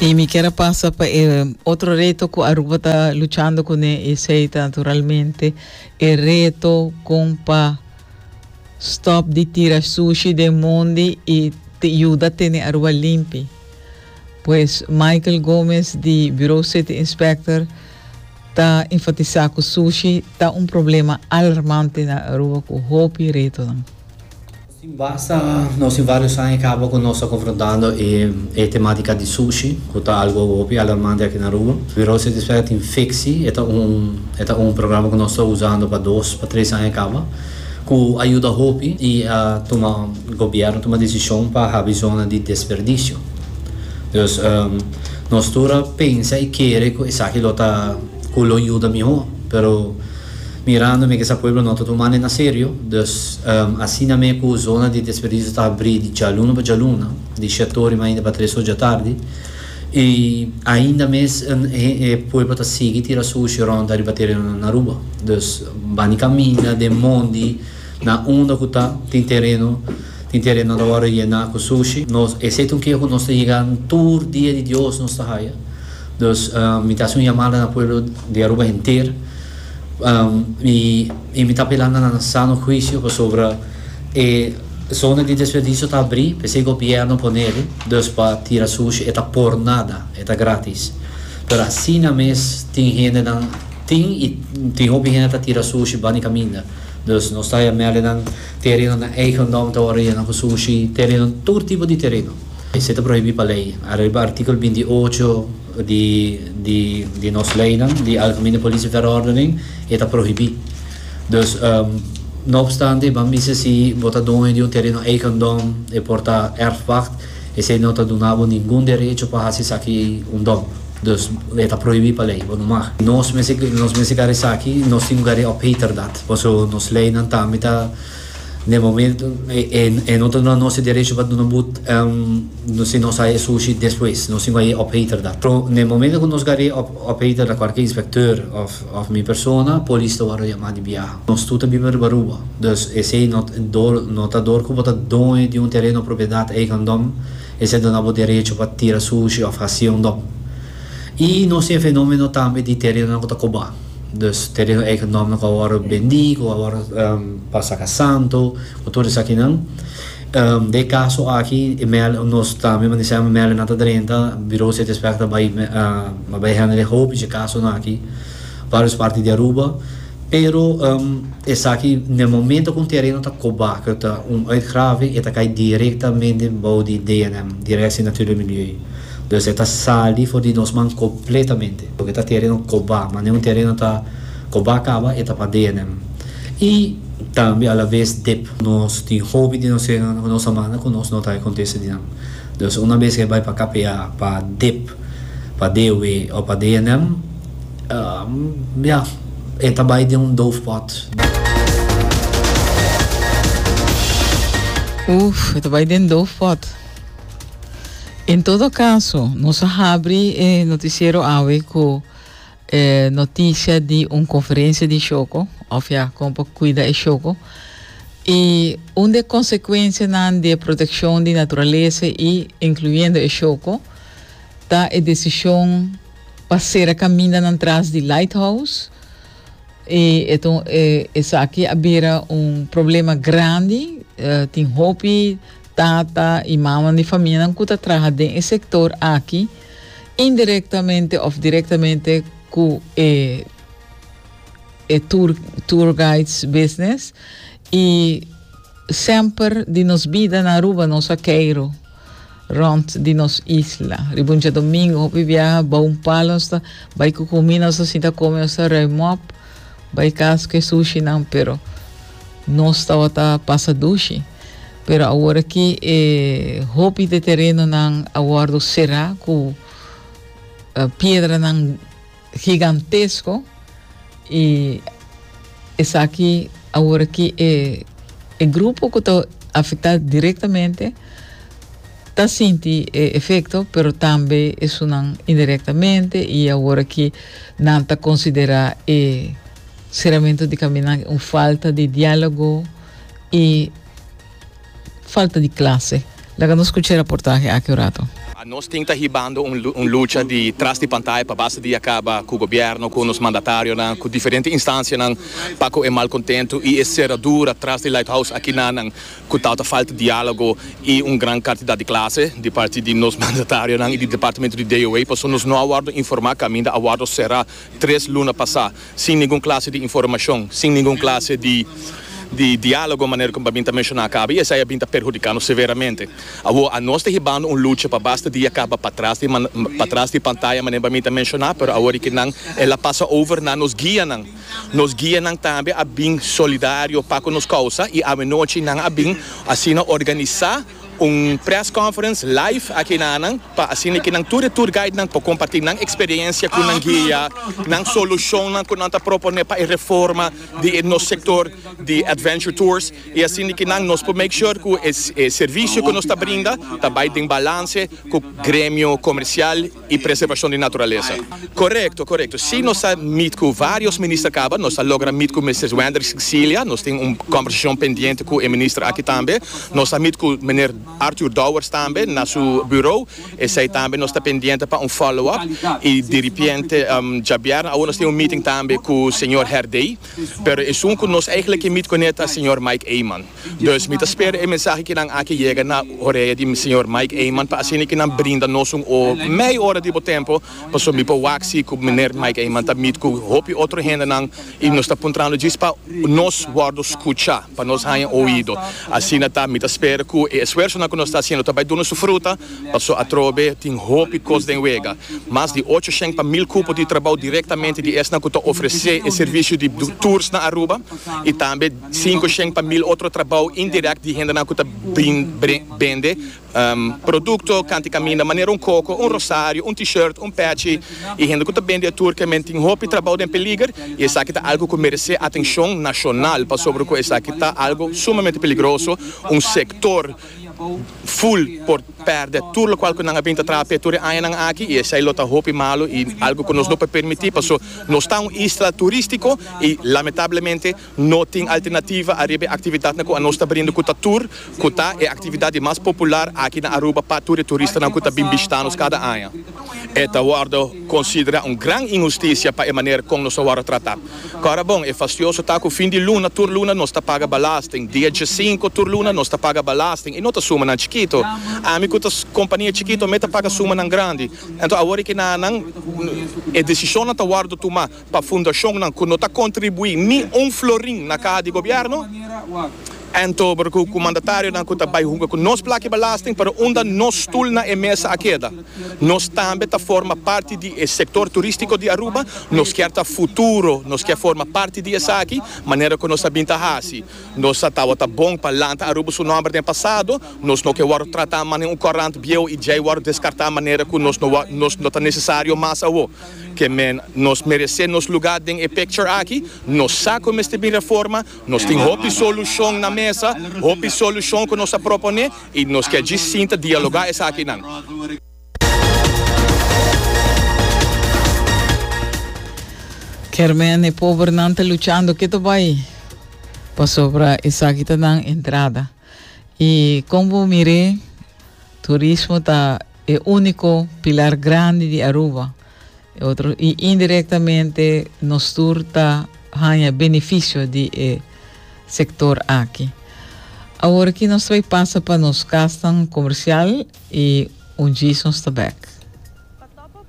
Y mi kier a pasa pa e otro reto cu Aruba ta luchando con e, esey ta naturalmente e reto con pa stop di tira sushi den mondi y te yuda tene Aruba limpi. Pues Michael Gomez di Bureau City Inspector ta enfatisa cu sushi ta un problema alarmante na Aruba cu hopi retonan. Sin basta nos tin varios aña caba cu nos ta confrontando e tematica di sushi, cu ta algo hopi alarmante aki na Aruba. Virus e dispega tin ficsi, e ta un e ta un programa cu nos ta usando pa dos pa tres aña caba, cu a yuda hopi y a tuma gobierno tuma decision pa habi zona di desperdicio. Dus, nos tur a pensa y kere cu esaki lo ta cu lo yuda miho, pero. Mirando mi ke sa pueblo no ta tuma ne na serio, dus asina me ku zona di desperdisio ta abri di djaluna pa djaluna, di shetori mainda pa tres oja tardi, i ainda mes e pueblo ta sigui tira sushi rond ariba terenonan na Aruba. Dus bani kaminda den mondi na unda ku ta tin tereno, tin terenonan ta wòrdu yená ku sushi. Nos, esei ta un keha ku nos ta yega tur dia di Dios nos ta haya. Dus mi ta hasi un yamada na pueblo di Aruba henter. Mi ta apelá na nan sano huisio pasobra e zona di desperdisio ta abrí, p'esei gobièrnu pone el dus pa tira sushi, e ta por nada, e ta grátis. Pero asina mes tin hendenan, tin i tin hopi hende ta tira sushi bani kaminda. Dus nos ta mel nan tereno na eigendom ta wòrdu yena ku sushi, tereno tur tipo di tereno. Esei ta prohibí pa lei arebi artíkulo binti ocho. di nos leynan di algemene politie verordening e ta prohibi dus no opstante ban mester si bo ta doño di un tereno eigendom e por ta erfpacht esey no ta duna bo ningun derecho pa haci esaki un dom dus e ta prohibi pa ley bo no mag nos mester nos mester gari esaki nos tin ku gari op heterdat paso nos leynan tambe ta. Den momento e no ta duna nos e derecho pa duna but si nos a e sushi despues, nos tin cu a e operator da. Pero na e momento cu nos gari e operator da cualkier inspector of mi persona, polis ta wordo yama di biaha. Nos tur ta biba riba Aruba, dus esey no no ta dor cu bo ta doño di un tereno propiedad eigendom esey duna bo derecho pa tira sushi of haci un dom. Y nos tin e fenomeno tambe di terenonan cu ta coba. Dus tereno ey cu nomber cu a worde bendi, cu a worde pa saca santo, cu tur esakinan. Den e caso aki e mel, nos ta mester mandi semper mel nan ta drenta, Bureau City Inspector ta bay, a bay hende den hopi dje casonan aki, varios parti di Aruba. Pero esaki den e momento cu un tereno ta coba, cu ta un uitgrave, e ta cay directamente bou di DNM, Directie Natuur en Milieu. Dios e ta sali for di nos man completamente, porque ta tereno cobá, manera un tereno ta cobá caba e ta pade'e n'e man. Y tambe a la vez dep. Nos tin hopi di nos señornan cu nos a manda cu nos, no ta acontece di nan. Dios una bes cu e bay pa KPA pa dep, pa dewe o pa de'e n'em, ya, e ta bay den un doof pot. Oef, e ta bay den doof pot. En todo caso, nos a habri e noticiero awe cu e noticia di un conferencia di Choco, of ya como pa cuida e Choco, y un de consecuencianan di e proteccion di naturaleza y incluyendo e Choco, ta e decision pa cera camindanan tras di Lighthouse, y eto e esaki a bira un problema grandi, tin hopi Tata i mamanan di famianan ku ta traha den e sektor aki indirektamente òf direktamente ku e e tur tour guides business i semper di nos bida na Aruba nos a keiro rònt di nos isla. Riba un djadomingo hopi biaha bou un palo nos ta bai ku kumí nos ta sinta kome nos ta rui mòp bai kas ku e sushinan pero nos tabata pasa dushi. Pero awor aki e hopi de terenonan a wòrdu será ku piedranan higantesko i esaki awor aki e e grupo ku ta afektá direktamente ta sinti e efekto pero tambe esunnan indirektamente i awor aki nan ta konsiderá e seramentu di kaminan un falta di diálogo y falta di clase. Laga nos scucha e raportahe aki un rato. A nos tin ta hibando un lucha di tras di pantaya pa basta dia caba cu gobierno, cu nos mandatarionan, cu diferente instancianan pa cu e malcontento y e ceradura tras di Lighthouse aki na nan cu tawata falta dialogo y un gran cantidad di clase di parti di nos mandatarionan y di departamento di DOH. Pasobra nos no a wordo informa caminda a wordo cera tres luna pasa. Sin ningun klase di informashon, sin ningun klase di di diálogo, manera ku Babin ta menshoná kaba, i esei a bin ta perhudikándo severamente. Awor a nos ta hibando un lucha pa basta dia kaba patras di patras di pantaya, manera Babin ta menshoná, pero awor di ke nan el a pasa over na nos guianan. Nos guianan tambe a bin solidario pa ku nos kousa i awenochi nan a bin asina organisá. Un press conference live aki na nan pa asina ke nan tur e tour guide nan por comparti nan experiencia cu nan guia, nan solucionnan cu nan ta propone pa e reforma di e nos sector di adventure tours y asina ke nan nos por make sure cu e servicio cu nos ta brinda ta bay den balance cu gremio comercial. y preservacion di naturalesa. Corecto, corecto. Si nos ta meet cu varios minister caba, nos ta logra meet cu Mister Wenders Cilia, nos tin un conversacion pendiente cu e minister aki tambe. Nos ta meet cu Meneer Arthur Dowers tambe na su bureau, esey tambe nos ta pendiente pa un follow up y diripiente djabièrna awor nos tin un meeting tambe cu Señor Herdey, pero esun cu nos eigenlijk ke meet cu ne ta Señor Mike Eman. Dus mi ta spera e mensahe kinan aki yega na orea di Señor Mike Eman pa asina ki nan brinda nos un o mei ora di bo tempo pasobra mi por wak si ku Meneer Mike Eman ta mit ku hopi otro hendenan i nos ta puntrando djis pa nos wòrdu skucha, pa nos haña oido. Asina ta, mi ta spera ku e esfuersonan ku nos ta hasiendo ta bai duna su fruta pasobra atrobe tin hopi kos den wega. Mas di ocho shèn pa mil kupo di trabou direktamente di esnan ku ta ofresé e servisio di tours na Aruba i tambe. sinku shen pa mil otro trabou indirekt di hendenan ku ta bende produkto kanti kaminda manera un koko, un rosario, un t-shirt, un pechi i hende ku ta bende e tur kemen tin hopi trabou den peliger i esaki ta algu ku meresé atenshon nashonal pasobra ku esaki ta algu sumamente peligroso, un sektor ful por pèrdè tur lokual ku nan a bin ta traha p'e tur e añanan aki i esei lo ta hopi malu i algu ku nos no por permití paso nos ta un isla turístiko i lamentablemente No tin alternativa ariba e actividadnan cu anos ta brinda cu ta tur, cu ta e actividad di mas popular aki na Aruba pa tur e turistanan cu ta bin bishita nos cada aña. E ta wordo considera un gran inhusticia pa e manera con nos ta wordo trata. Cora bon, e fastioso ta cu fin di luna tur luna nos ta paga belasting, dia diesinco tur luna nos ta paga belasting y no ta sumanan chikito. Ami cu ta compania chikito me ta paga sumanan grandi. Enton awor e kinanan e decisionnan ta wordo tuma. Pa fundacionnan cu no ta contribui ni un florin na caha di gobierno, anto broco cu mandatarionan cu ta bay hunga cu nos plaki belasting pero unda nos stoel na e mesa a keda. Nos tambe ta forma parti di e sector turistico di Aruba, nos kier ta futuro, nos kier forma parti di esaki, manera cu nos a bin ta haci. Nos a tabata bon pa lanta Aruba su nomber den pasado, nos no ke wordo trata manera un corant bieuw y djey wordo descarta manera cu nos no wordo, nos no ta necesario mas awo. ke men nos meresé nos lugá den e picture aki, nos sa ku mester bin reforma, nos tin hopi solushon na mesa, hopi solushon ku nos a proponé i nos ke djis sinta dialogá esakinan. Kermèn, E pobernan ta luchando ke ta bai pasobra esaki ta nan entrada. I kon bo mir'é, turismo ta. E único pilar grandi di Aruba, e otro, y indirectamente nos tur ta haña beneficio di e sector aki. Awor aki nos trae pasa pa nos casnan comercial y un djis nos ta back.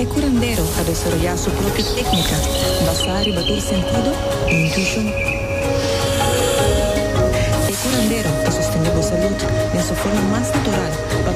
E curandero a desoroyá su propio técnica basá riba tur sentido i intuishon. E curandero ta sostendé bo salud den su forma mas natural pa.